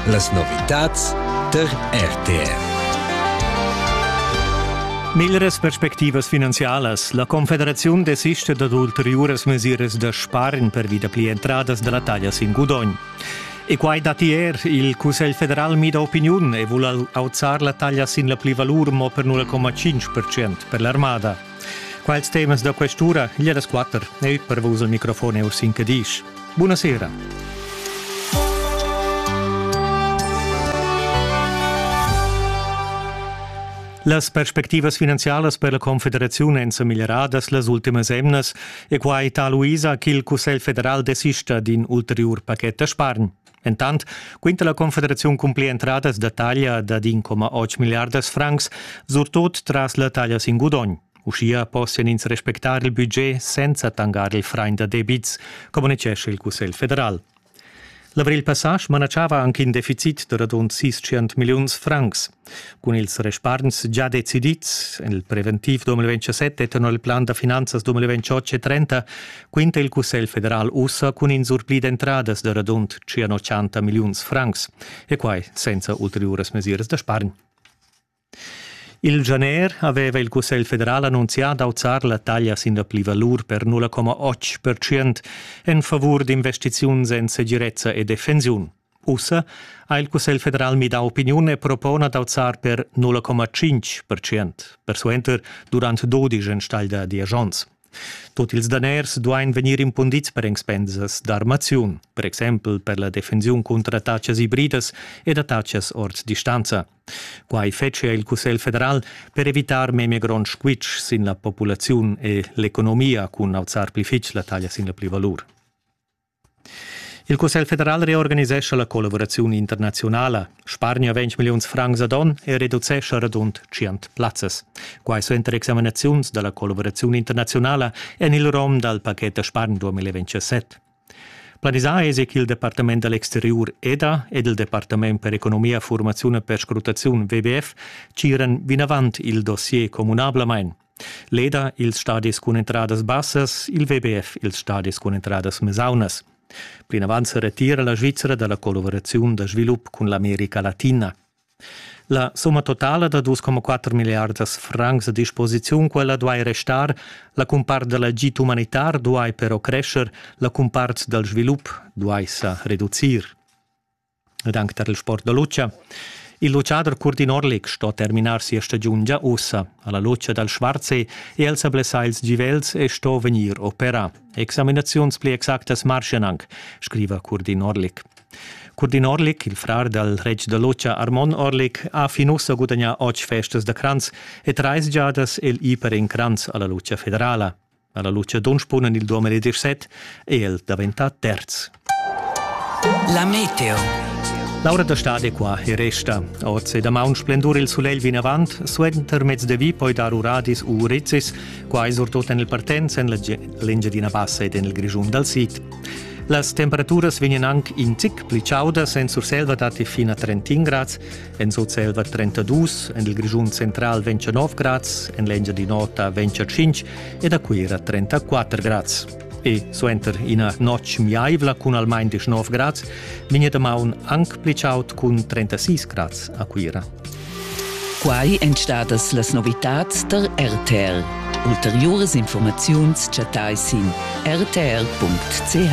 Las novitads tar RTR. Miglras perspectivas finanzialas. La Confederaziun desista dad ulteriuras mesiras da spargn pervi da pli entradas da la taglia sin gudogn. E quai datti er. Il Cussegl federal mida opiniun e vul auzar la taglia sin la plivalur mo per 0,5% per l'armada. Quels temas da questura gliedas quatter ei per vus il microfon e sin Cadisch. Buna sera. Las perspectivas finanzialas per la Confederaziun èn sa miglieradas las ultimas emnas e quai tal uisa ch'il Cussegl federal desista d'in ulteriur paquet da spargn. Entant quinta la Confederaziun cumplir entradas da taglia da 1,8 milliardas francs, surtut tras la taglia sin gudogn. Uschia possian ins respectar il budget senza tangar il frain da debits, communitgescha il Cussegl federal. L'avril passà smanatschava anche in deficit da radund 600 milliuns francs. Cun ils respargns già decidids en il preventiv 2027 tenor il plan da finanzas 2028 e 30 quinta il Cussegl federal ussa cun in surpli d'entradas da radund 180 milliuns francs e quai senza ulteriuras mesiras da spargn. Il gener aveva il Cussegl federal annunzià d'auzar la taglia sin la plivalur per 0,8% en favur d'investiziuns en segirezza e defensiun. Ussa ha il Cussegl federal midà opiniun e propona d'auzar per 0,5 percent, persuenter durant dudisch enstagl da diesch onns. Tut ils daners duain vegnir impundids per expensas d'armaziun, per exempel per la defensiun cunter attacas ibridas ed attacas ord distanza. Quai fetschia il Cussegl federal per evitar memia gronds squitsch sin la populaziun e l'economia cun auzar pli fitg la taglia sin la plivalur. Il Cussegl federal reorganisescha la collavuraziun internaziunala. Spargna 20 milliuns francs ad onn e reducescha radund 100 plazzas. Quai suenter examinaziuns da la collavuraziun internaziunala en il rom dal paquet da spargn 2027. Planisà èsi ch'il Departament da l'exteriur EDA ed il Departament per economia, formaziun e perscrutaziun WWF tgiran vinavant il dossier communablamain. Leda ils stadis cun entradas bassas, il WBF ils stadis cun entradas mesaunas. Plinavant se retira la Svizzera dalla collaboraziun da svilup cun l'America Latina. La somma totala da 2,4 miliardas francs a disposiziun quella duai restar, la cumpart da l'agit umanitar duai però crescer, la cumpart dal svilup duai sa reducir. ed anc tar il sport da lutscha. Il lutschader Curdin Orlik sto terminar sia stagiun gia ussa alla lutscha dal Schwarzsee e el sa blessà ils givels e sto vegnir operà. Examinaziuns pli exactas marschan anc, scriva Curdin Orlik. Curdin Orlik, il frar dal reg da lutscha Armon Orlik, ha fin ussa gudagnà otg festas da cranz e trais giadas il iper in cranz alla lutscha federala. Alla luchadon spunan il 2017 e el daventa terz. La Meteo. L'aura da stade qua e resta. Oz e damaun splendur il sulegl vinavant, suenter mezz de vi poi dar uradis u rizis, quai surtut en il partenz en l'Engiadina Bassa ed en il Grischun dal Sid. Las temperaturas vegnan anc in zic pli chaudas en Surselva datti fin a 31 grads En Sutselva 32, en il Grischun central 29 grads, en l'Engiadin'Ota 25 ed a Cuira 34 grads. E suenter ina notg miaivla cun almain 19 grads vegn da maun anc pli chaud cun 36 grads a Cuira. Quai èn stadas las novitads tar RTR. Ulteriuras informaziuns chattai sin rtr.ch.